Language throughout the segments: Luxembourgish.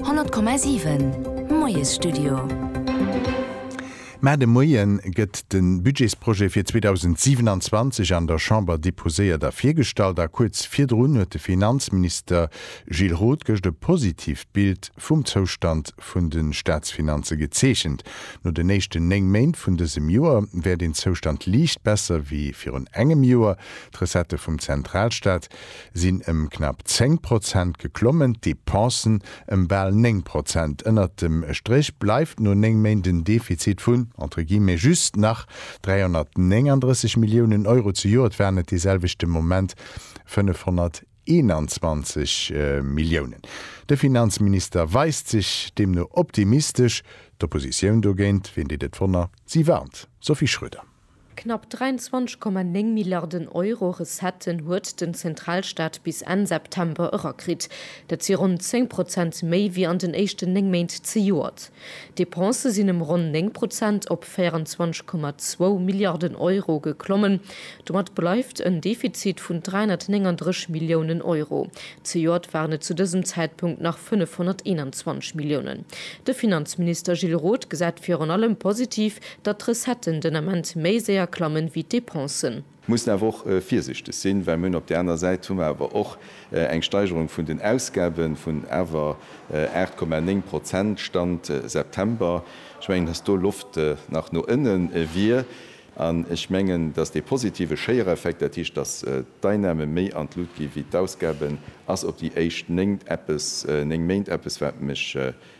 100,7 Moiesstudio. Mä de Moie gëtt de Budgetsprojet fir 2027 an der Chamber deposéiert a virgestallt a kuerz virdrun huet de Finanzminister Gilles Roth gëscht e positiivt Bild vum Zoustand vun de Staatsfinanze gezeechent. No den éischten néng Méint vun dësem Joer wär deen Zoustand liicht besser wéi virun engem Joer. D'Recettë vum Zentralstaat sinn ëm knapp 10 Prozent geklommen, d'Depensen ëm bal 9 Prozent. Ënnert dem Stréch bleift no 9 Méint en Defizit vun, entre guillemets, just nach 339 Milliounen Euro. Zejoert waren et dee selwechte Moment 521 Milliounen. De Finanzminister weist sech deemno optimistesch, d'Oppositioun dogéint, ween deet et wonner, si warnt. Sophie Schröder. Knapp 23,9 Milliarden Euro Recetten huet den Zentralstaat bis Enn September erakritt. Dat si ronn 10 Prozent méi wéi an den éischten 9 Méint zejoert. D'Depensë sinn ëm ronn 9 Prozent op 24,2 Milliarden Euro geklommen. Domat bleift en Defizit vun 339 Milliounen Euro. Zejoert waren et zu dësem Zäitpunkt nach 521 Milliounen. De Finanzminister Gilles Roth gesäit virun allem positiv, datt d'Recetten den Ament méi séier klammen wéi d'Dépensen. Mussen awer och virsichteg sinn, well mir hunn op där aner Säit hu mer awer och eng Steigerung vun den Ausgaben vun awer 8,9 Prozent, Stand September. Ech mengen, datt do Loft nach no ënne wier an ech mengen, datt dee positive Schéiereffekt, dat heescht, datt d'Einnamen méi an d'Lut gi wéi d'Ausgaben, ass op déi éischt néng Méint eppes, wat mech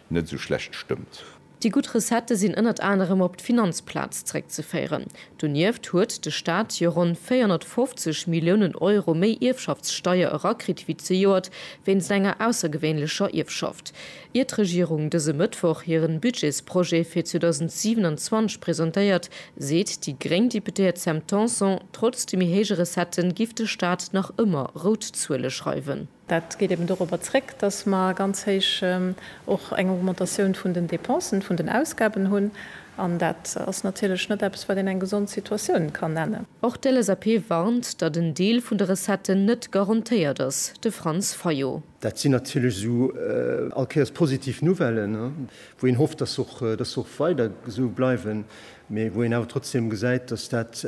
net esou schlecht stëmmt. Déi gutt Recettë sinn ënnert anerem op d'Finanzplaz zréckzeféieren. Donieft huet de Staat jo ronn 450 Milliounen Euro méi Ierfschaftssteier erakritt wéi zejoert wéinst enger aussergewéinlecher Ierfschaft. Ier d'Regierung dëse Mëttwoch hiren Budgetsprojet fir 2027 presentéiert, seet déi gréng Deputéiert Sam Tanson, trotz de méi héije Recettë giff de Staat nach ëmmer rout Zuele schreiwen. Dat geet eben dorobber zréck, datt mer ganz héich och eng Augmentatioun vun den Dépensen, vun den Ausgaben hunn, an dat ass natierlech net eppes, wat een eng gesond Situatioun kann nennen. Och d'LSAP warnt, datt en Deel vun de Recetten net garantéiert ass, de Franz Fayot. Dat sinn natierlech esou all Kéiers positiv Nouvellen, wou een hofft, datt se och weider esou bleiwen, mee wou een awer trotzdem gesäit, datt dat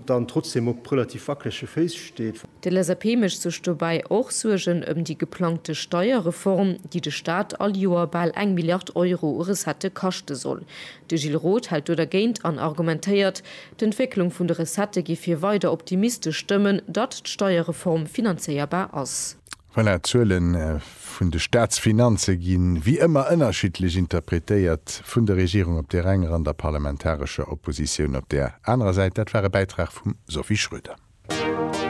dann trotzdem op relativ wackelege Féiss steet. De LSAP mécht sech dobäi och Suergen ëm déi geplangte Steierreform, déi de Staat all Joer bal eng Milliard Euro u Recettë kaschte soll. De Gilles Roth hält do dergéint an argumentéiert, d'Entwécklung vun de Recettë géif hie weider optimistesch stëmmen, datt d'Steierreform finanzéierbar ass. Voilà, d'Zuele vun de Staatsfinanze gi wéi ëmmer ënnerschiddlech interpretéiert, vun der Regierung op där enger an der parlamentarescher Oppositioun op där anerer Säit. Dat war e Bäitrag vum Sophie Schröder.